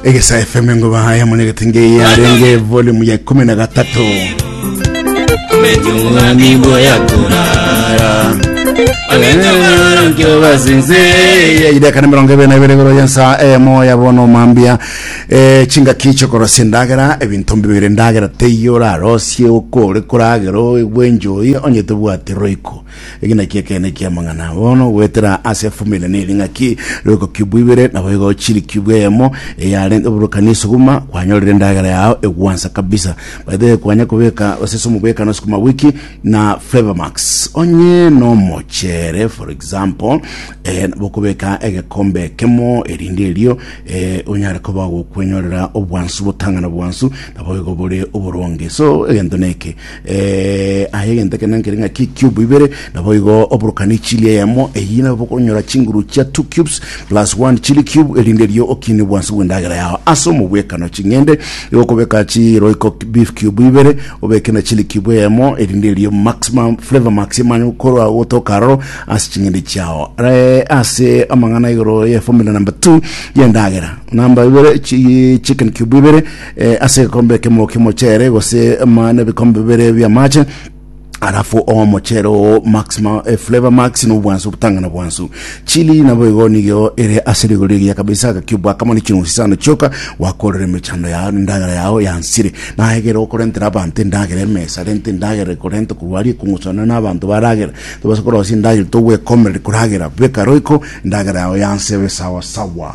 egesa fm ngo bahaya monegete ngei arenge volume ya ikumi na gatatu nibo yakurara ideka na mirongo ibere na ibere igoro yensa emo ya bono mambia eh, chingaki chokorosia endagera ebinto mbibere endagera teiyo orarosie okore koragero bwenjoi onye tobwati roiko Eke nakio ekeene eki'amang'ana. Bono goetera ase efamiri ne ring'aki rigokobua ibere, naboigo chirikibua eyemo eyarenge oborokani esuguma, kwanyorire endagera yao egwansa kabisa. By the way, kwanya kobeka gose ase omobwekano sukuma wiki na Flavour Max. Onye nomochere for example, eh, bokobeka egekombe ekemo erinde erio eh, onyare koba gokwenyorera obwansu botang'ana bwansu, naboigo bore oboronge. So egento neke. Eh, aye egento ekene nkere ng'a ki cube ibere, naboigo oborokanie chili eyemo eyio, nabo okonyora chinguru chia two cubes plus one chili cube, erinde erio okinie bwansi bw'endagera yao. Ase omobwekano ching'ende, igo okobeka chi Royco beef cube ibere, obeke na chili cube eyemo, erinde erio maximum flavor max emanye gokorwa gotoka aroro ase ching'ende chiao. Eh, ase amang'ana igoro ye formula number two y'endagera, number ibere chi chicken cube ibere, eh, ase egekombe ekemo kimochele gose ma nebikombe bibere biamache alafu omochero oo max ma, eh, flavor max nobwansu obutang'ana bwansu chili nabo igo nigo ere ase rigori egiya kabisa agakiubu akamo ne chinusi sana chioka wakorera emechando yao endagera yao yansire nagera okorentera abanto endagera emesa rente endagera ekorenta korwaria ekong'usana na abanto baragera tobasa korosia endagera togwekomereri koragera beka roiko endagera yao yansebe sawa sawa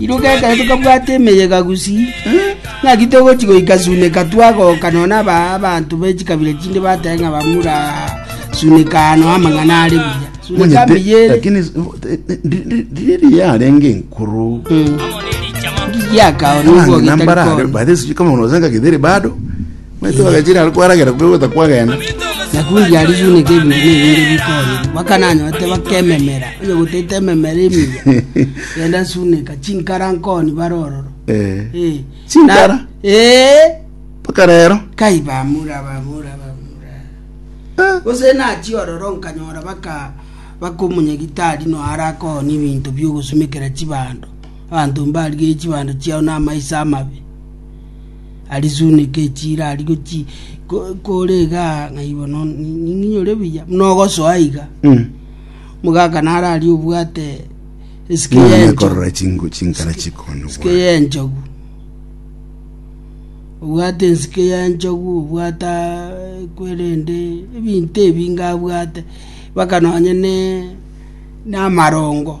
Iroka ekero tokabwata emeyega gusii, ng'aki togochia goika Suneka twagoka nonya aba abanto be chikabira chinde batebe ng'a bamura Suneka ano amang'ana are buya. Suneka Monyete, mbiya ere lakini s- eh, eh, ndi- ndi- ndiri riya arenge enkoro ngiyakao Abang'ina mbara are, nigogeta baadhi sijui kama unawezanga githeri bado Omanyete bagachire are kwaragera kwegweta kwagenda. Na kundia aria biuneka ebinto nebinde bikonya, mpaka nanyorete baka ememera, onye gotaete ememera emiya, genda suneka chinkara nkoni bare ororo. Eh. Eh. Chinkara? Na- Eh. Mpaka rero. Kai bamura bamura bamura. Eh. Gose nachi ororo nkanyora baka bakomunya gitari no arakoni ebinto biogosumekera chibando. Abanto mbarigerie chibando chiao na amaiso amabe. Arizune gechi ira ari gochi ko- kore iga ng'ai bono ni- ni- ninyore buya buna ogosoa iga Mm. mogaka naro ari obwate esike Ng'ana yenchogu nekorora chingo chinkara chikonywa esike bwango. yenchogu obwate ensike yenchogu obwata kwerende ebinto ebinge abwate mpaka nonye ne namarongo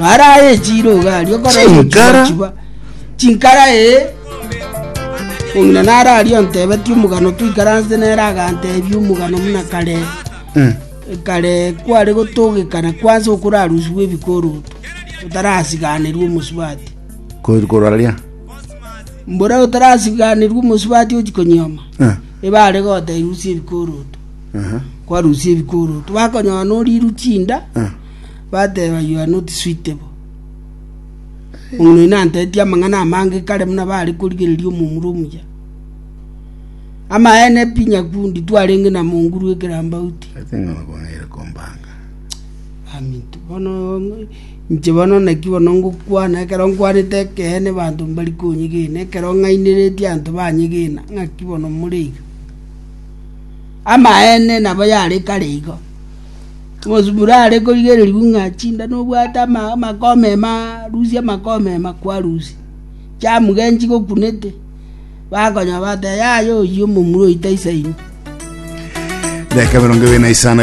Maraye chiro iga aria okora Chinkara. omochibwa chinkara ee ong'ina naro aria ontebeti omogano toikaranse nere agantebi omogano muna kare Mm. kare kware gotogekana kwansa okorarusiwa ebikoroto otarasiganerwa omosubati Ko- koraria mbora otarasiganerwa omosubati ochi konyioma Eh, ebare gotairusia ebikoroto aha, kwarusia ebikoroto bakonyora noriru chinda eh. bateba, You are not suitable. Omino oino antetie amang'ana amange kare buna bare korigereria omomura omuya. Amaene pi nyakundi twarenge na monguru ekerambauti. Ase ng'a nabang'aire kombanga. Aminto bono ng'o- inche bono naki bono ngokwana ekero nkwanete ekeene banto mbari konyegena ekero ng'aineretie anto banyegena ng'aki bono more iga. Amaene nabo yare kare igo. Omosuburare korigererigwa ng'a chinda nobwate amakomema arusia amakomema kwarusia, chiamuga enchigokunete, bakonya bateba yaya oyio omomura oito aisaini. Dakika emerongo ebere na isano.